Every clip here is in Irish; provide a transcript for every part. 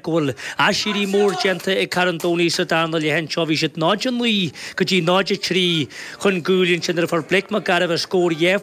go bhfuil aiséirí mór déanta ag Carn Domhnaigh sa darna leath anseo, bhí siad 0-9 go dtí 0-3 chun cúil ansin nuair a fuair Blake McGarvey a scór dhá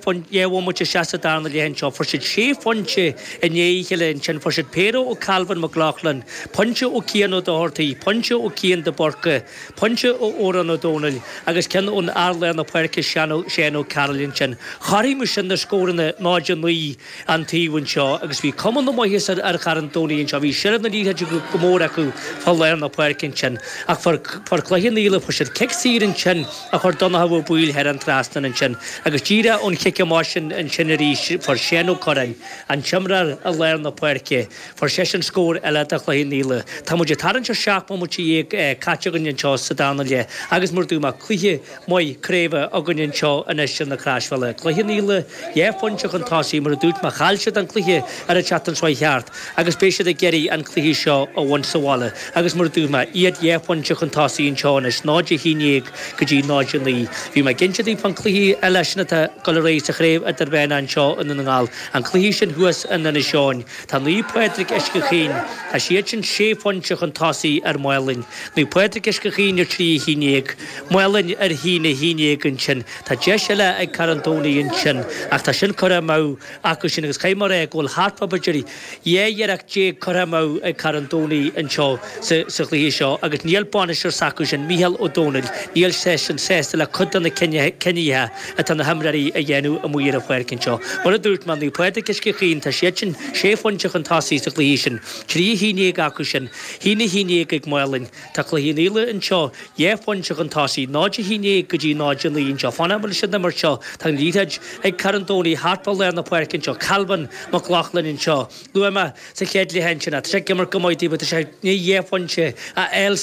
bhomaite isteach sa darna leath anseo, fuair siad sé phointe i ndiaidh a chéile ansin, fuair siad péire ó Calvin Mac Lochlainn, pointe ó Cian Ó Dochartaigh, pointe ó Cian de Búrca, pointe ó Odhrán Ó Domhnaill agus ceann ón fhear lár na páirce Séan Ó Cearuil ansin. Chothromaigh sin na scóranna 0-9. an taobh anseo agus bhí cuma na maitheasa ar ar Charn Domhnaigh anseo. Bhí seilbh na liathróide go go mór acu fá lár na páirce ansin ach fuair fuair Cloich Cheann Fhaola fuair siad cic saor ansin a chuir Donnchadh Ó Baoill thar an trasnán ansin agus díreach ón chic amach sin ansin arís fuair Séan Ó Curráin an t-imreoir i lár na páirce fuair seisean scór eile do Chloich Cheann Fhaola. Tá muid ag tarraingt ar seacht mbomaite dhéag caite againn anseo sa dara leath agus mar dúirt mé cluiche maith craoibhe againn anseo anois ar na Croisbhealaí. Cloich Cheann Fhaola dhá phointe chun tosaigh, mar a dúirt mé. Chaill siad an cluiche ar an tseachtain seo thart agus beidh siad ag iarraidh an cluiche seo a bhaint sa bhaile agus mar a dúirt mé, iad dhá phointe chun tosaigh anseo anois, 0 11 go dtí 0 9. Bhí mé ag inse daoibh fán chluiche eile sin atá ag dul ar aghaidh sa Chraobh Idirmheánach anseo i nDún na nGall, an cluiche sin thuas in Inis Eoghain. Tá Naomh Pádraig Uisce Chaoin, tá siad sin sé phointe chun tosaigh ar Mhálainn. Naomh Pádraig Uisce Chaoin ar trí a haon déag. Málainn ar a haon a haon déag ansin. Tá deis eile ag Carn Domhnaigh ansin, ach tá sin curtha amach acu sin agus caithfidh mé a rá go bhfuil thart fá b'fhéidir dhá iarracht déag curtha amach ag Carn Domhnaigh anseo sa chluiche seo agus níl bainisteoir s'acu sin, Micheál Ó Domhnaill, níl seisean sásta le cuid de na cinnithe atá na himreoirí a dhéanamh amuigh ar an pháirc anseo. Mar a dúirt mé, Naomh Pádraig Uisce Chaoin, tá siad sin sé phointe chun tosaigh sa chluiche sin. Trí a haon déag acu sin. A haon a haon déag ag Málainn. Tá Cloich Cheann Fhaola anseo, dhá phointe chun tosaigh, 0-11 go dtí 0-9 anseo. Fanaimis leis an imirt seo, tá an liathróid ag Carn Domhnaigh thart fá lár na páirce anseo, Calvin Mac Lochlainn anseo. Luaigh mé sa chéad leath ansin, tá sé ag imirt go maith dóibh, tá sé i ndiaidh dhá phointe a fháil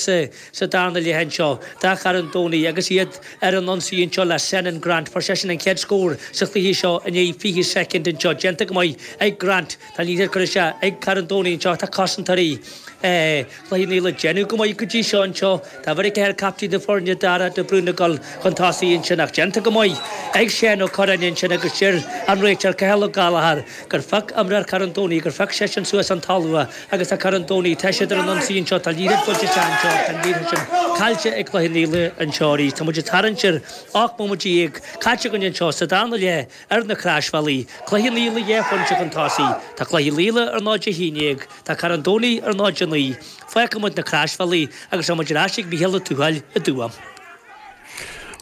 sa darna leath anseo, do Charn Domhnaigh, agus iad ar an ionsaí anseo le Senan Grant. Fuair seisean an chéad scór sa chluiche seo i ndiaidh 20 soicind anseo, déanta go maith ag Grant. Tá an liathróid curtha isteach ag Carn Domhnaigh anseo, tá cosantóirí Chloich Cheann Fhaola ag déanamh go maith go dtí seo anseo. Tá beirt acu ar chaptaen na foirne, Dara de Brún ag dul chun tosaigh ansin ach déanta go maith ag Seán Ó Curráin ansin agus deir an réiteoir Cathal Ó Gallchóir gur phioc imreoir Charn Domhnaigh, gur phioc seisean suas ón talamh agus tá Carn Domhnaigh, tá siad ar an ionsaí anseo, tá Naoín ag baint isteach anseo ach tá an liathróid sin caillte ag Cloich Cheann Fhaola anseo arís. Tá muid ag tarraingt ar 18 mbomaite caite againn anseo sa dara leath. Ar na Claisbhealaí, Cluichí na Leath Cheannais ag Tosaí, Tá cluichí eile ar ndóigh Dé hAoine ag, tá Cora an Domhnaigh ar ndóigh Dé hAoine, fágfaimid na Claisbhealaí agus táimid ar ais ag Micheál Ó Tuathail i dTuaim.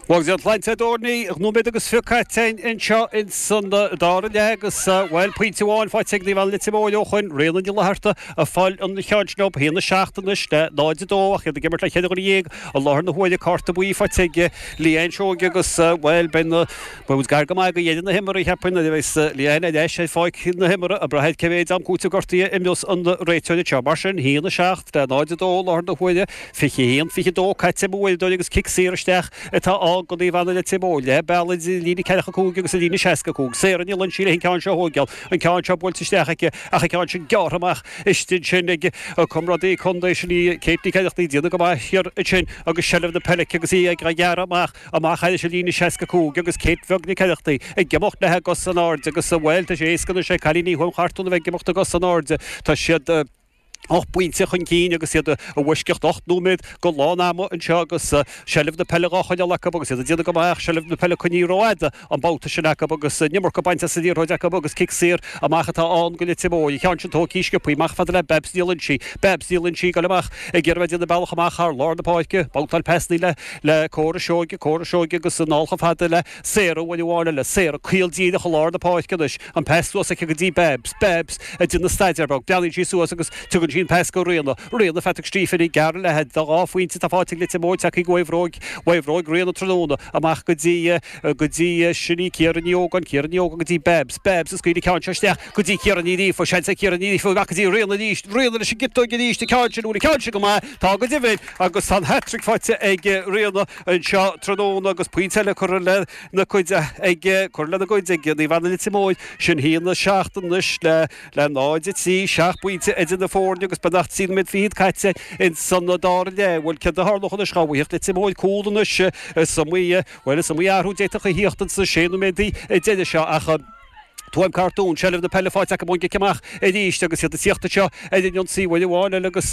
Bhuel go deimhin tá nóiméad agus fiche caite anseo in san dara leath agus, bhuel, pointe amháin faighte ag Naomh Anna Leitir Móir ó shoin, Ríona Ní Fhlatharta ag fáil an cheann sin dóibh, 1 7 anois le 0 2 ach iad ag imirt le cheithre dhuine dhéag i láthair na huaire, cárta buí faighte ag Leanne Seoige agus, bhuel, beidh na. B'fhuaimint gar go maith go dheineadh na himreoirí poinnir a bheith sa liáin ar dheis ar pháirc na himeartha, ag brath cé mhéid am cúitimh gortaithe a imreos an réiteoir seo. Mar sin, 1, 7, le 0, 2 i láthair na huaire, 21, 22 caite ag m'uaireadóir agus cic saor isteach atá ann go Naomh Anna Leitir Móir leath bealaigh idir an líne ceathracha cúig agus an líne seasca cúig. Sarah Ní Loinsigh leis an ceann seo a thógáil, an ceann seo buailte isteach aici ach an ceann sin gearrtha amach istigh ansin ag a comrádaí contae sin í Kate Nic Oireachtaigh. Déanamh go maith thiar ansin agus seilbh na peile aici agus í ag gearradh amach. Amach thar an líne 65 agus Kate bheag Nic Oireachtaigh ag imeacht léithi a gcos in airde agus, bhuel, tá sé éasca anois ag cailíní Thuaim Cortoon a bheith ag imeacht a gcos in airde. Tá siad ocht bpointe chun cinn agus iad i bhfoisceacht ocht nóiméad go lán ama anseo agus seilbh na peile dhá choinneáil acu agus iad ag déanamh go maith. Ach seilbh na peile coinnithe rófhada. an babhta sin acu agus an iomarca bainte as an liathróid acu agus cic saor amach atá ann go Leitir Móir. An ceann sin tógtha sciobtha amach fada le Babs Ní Loinsigh. Babs Ní Loinsigh ag dul amach ag iarraidh a bheith ag déanamh bealach amach thar lár na páirce, babhtáil pasanna le le Cora Seoige, Cora Seoige agus anall fada le Sarah uair amháin eile, Sarah ag gabháil díreach i lár na páirce. Anois an pas suas aici go dtí Babs. Babs ag déanamh staidéar beag. Breathnaíonn sí suas agus tugann sí an pas go Ríona. Ríona, Phatrick Stephen ag gearradh léithi. An dhá phointe atá faighte ag Leitir Móir tagtha ó bhróg, ó bhróg Ríona tráthnóna amach go dtí go dtí sin í, Ciara Ní Ógáin, Ciara Ní Ógáin go dtí Babs, Babs ag scaoileadh an ceann seo isteach go dtí Ciara Ní Ghríofa, seans ag Ciara Ní Ghríofa amach go dtí Ríona arís, Ríona leis an gciotóig arís, an ceann sin, bhfuil an ceann sin go maith? Tá go deimhin agus tá an hat-trick faighte ag Ríona anseo tráthnóna agus pointe eile curtha lena gcuid ag, curtha lena gcuid ag Naomh Anna Leitir Móir. Sin a haon a seacht anois le le 0-3, seacht bpointe idir na foirne agus beagnach trí nóiméad fichead caite ins an dara leath. Bhuel céard a tharlódh anois? Dá bhfaigheadh Leitir Móir cúl anois is iomaí. Bhuel, is iomaí athrú d'fhéadfadh a thíocht ins na sé nóiméad deiridh seo ach Tuaim Cortoon seilbh na peile faighte acu ón gcic amach arís agus iad ag tíocht anseo ar an ionsaí uair amháin eile agus